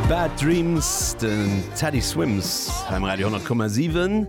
Bad Dreams, den Teddy Swims hei am Radio 10,7.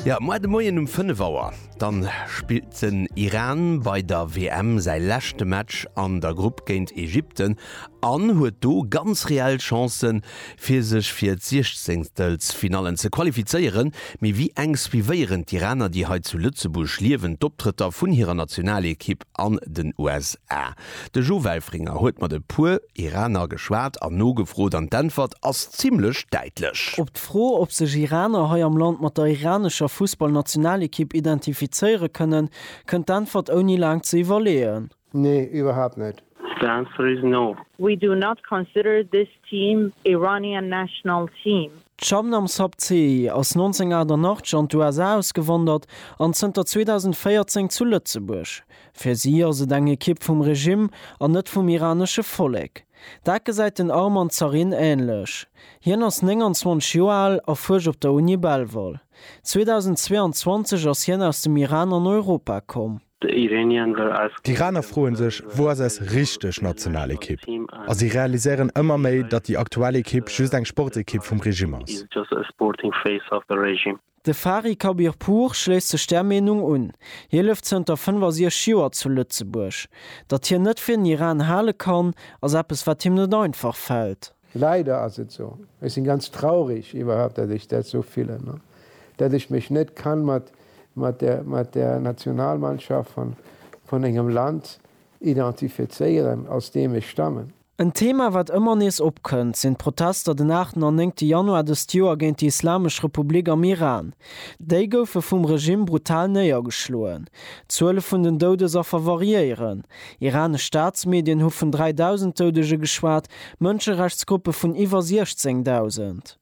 Ja moi de Moien um 5 Auer, dann spillt den Iran bei der WM säi leschte Match an der Grupp géint Ägypten an huet do ganz reell Chancen fir sech fir d'Siechzehnstelsfinallen ze qualifizéieren. Mee wéi eng suivéieren d'Iraner, déi hei zu Lëtzebuerg liewen, d'Optrëtter vun hirer Nationalekipp? an den USA. De Jo Welfringer huet mat e puer Iraner geschwat an nogefrot an d'Äntwert ass zimlech däitlech. Op d'Fro, ob sech Iraner hei am Land mat der iranescher Fussballnationalekipp identifizéiere kënnen, kënnt d'Äntwert ouni laang ze iwwerleeën. Nee, iwwerhaapt net. The answer is no. We do not consider this Team, Iranian National Team. D'Shabnam Sabtee ass 1988 an d'USA ausgewandert an zënter 2014 zu Lëtzebuerg. Fir si ass et eng Ekipp vum Regimm an net vum iranesche Vollek. Dat gesäit den Arman Zarin änlech. Hien ass 29 Joer al a fuerscht op der Uni Belval. 2022 ass hien aus dem Iran an Europa komm. The Iranians are asking. D'Iraner froen sech, wou ass eis richteg national Ekipp? A si realiséieren ëmmer méi, datt déi aktuell Ekipp just eng Sportekipp vum Regime ass. De Fari Khabirpour schléisst sech där Meenung un. Hie lëft zënter 65 Joer zu Lëtzebuerg. Datt hien net fir den Iran hale kann, ass eppes wat him net einfach fält. Leider ass et sou. Ech sinn ganz traurig iwwerhaupt dat ech dat sou fillen an dat ech mech net kann mat mat der Nationalmannschaft van van engem Land identifezéieren aus deem ech stammen. En Thema wat ëmmer nees opkënnt, sinn d'Protester den aachten an néngte Januar dëst Joer géint déi Islamesch Republik am Iran. Déi goufe vum Regimm brutal néiergeschloen. D'Zuele vun den Doudesaffer variéieren. Iranesch Staatsmedien hu vun 3.000 Doudege geschwat, Mënscherechtsgruppe vun iwwer 16.000.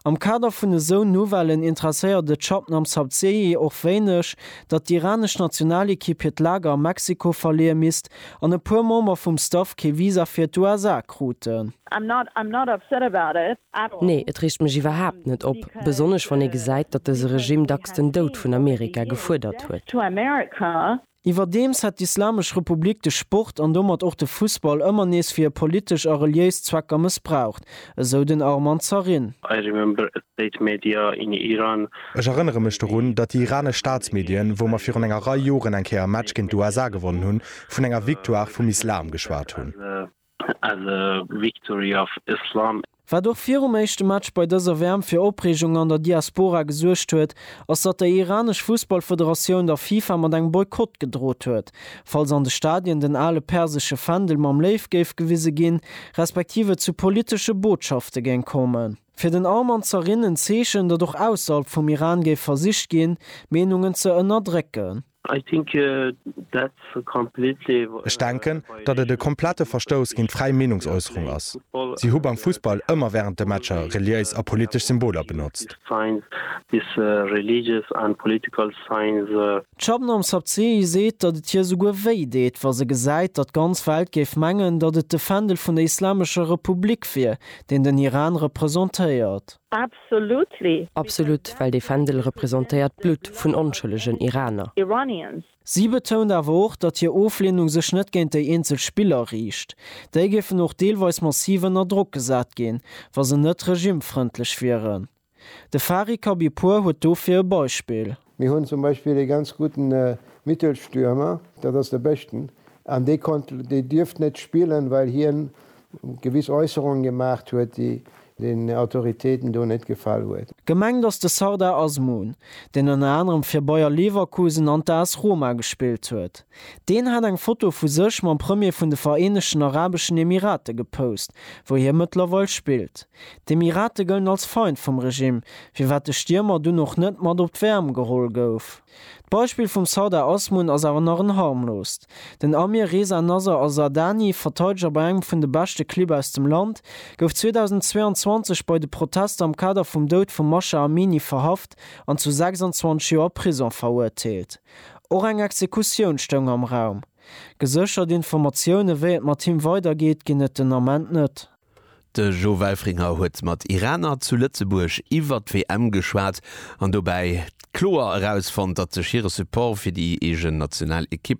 Am Kader vun esou Nouvellen interesséiert et Shabnam Sabzehi och wéineg, datt d'iranesch Nationalekipp hiert Lager a Mexiko verleeë misst an e puer Member vum Staff kee Visa fir d'USA kruten. Nee, et reegt mech iwwerhaapt net op, besonnesch wann ee gesäit, datt dëse Regime dacks den Doud vun Amerika gefuerdert huet. Iwwerdeems hätt d'Islamesch Republik de Sport an domat och de Fussball ëmmer nees fir hir politesch a reliéis Zwecker mëssbraucht, esou den Arman Zarin. I remember a state media in Iran. Ech erënnere mech dorun, datt déi iranesch Staatsmedien, wou mer virun enger Rei Joren eng Kéier e Match géint d'USA gewonnen hunn, vun enger Victoire vum Islam geschwat hunn. as a victory of Islam. Wat och virum éischte Match bei dëser WM fir Opreegung an der Diaspora gesuergt huet, ass datt déi iranesch Fussballfederatioun der FIFA mat engem Boykott gedrot huet, falls an de Stadien den ale persesche Fändel mam Léiw géif gewise ginn, respektiv et zu politesche Botschafte géing kommen. Fir den Arman ze erinn, en Zeechen, datt och ausserhalb vum Iran géif versicht ginn, d'Meenungen ze ënnerdrécken. I think that's a completely. Ech denken, datt et e komplette Verstouss géint d'fräi Meenungsäusserung ass. Si hu beim Fussball ëmmer wärend de Matcher reliéis a politesch Symboler benotzt. D'Shabnam Sabzehi seet, datt et hir souguer wéi deet, wa se gesäit, datt d'ganz Welt géif mengen, datt et de Fändel vun der Islamescher Republik wier, deen den Iran representéiert. Absolut, well dee Fändel representéiert d'Blutt vun onschëllegen Iraner. Si betount awer och, datt hir Ofleenung sech net géint déi eenzel Spiller riicht. Déi géifen och deelweis massiv ënner Drock gesat ginn, wa se net regimefrëndlech wieren. De Fari Khabibpour huet dofir e Beispill. Mir hunn zum Beispill ee ganz gudden Mittelstürmer, dat ass de Beschten, an dee konnt, dee dierft net spillen, well hien gewiss Äusserungen gemaacht huet, déi den Autoritéiten do net gefall huet. Gemengt ass de Sardar Azmoun, deen ënner anerem fir Bayer Leverkusen an d'AS Roma gespillt huet. Deen hat eng Foto vu sech mam Premier vun de Vereenegten Arabeschen Emirate gepost, wou hie mëttlerweil spillt. D'Emirate gëllen als Feind vum Regimm, firwat de Stiermer dunn och net mat op d'WM geholl gouf. D'Beispill vum Sardar Azmoun ass awer nach en harmloost. Den Amir Reza Nasser Al-Zardani, Verteideger bei engem vun de beschte Clibb aus dem Land, gouf 2022 bei de Protester am Kader vum Doud vum Masha Amini verhaft an zu 26 Joer Prisong verurteelt. Och eng Exekutioun stoung am Raum. Geséchert Informatioune wéi et mat him weider geet, ginn et den Ament net. De Jo Welfringer huet mat Iraner zu Lëtzebuerg iwwert d'WM geschwat an dobäi kloer erausfonnt, datt sech hire Support fir déi eegen Nationalekipp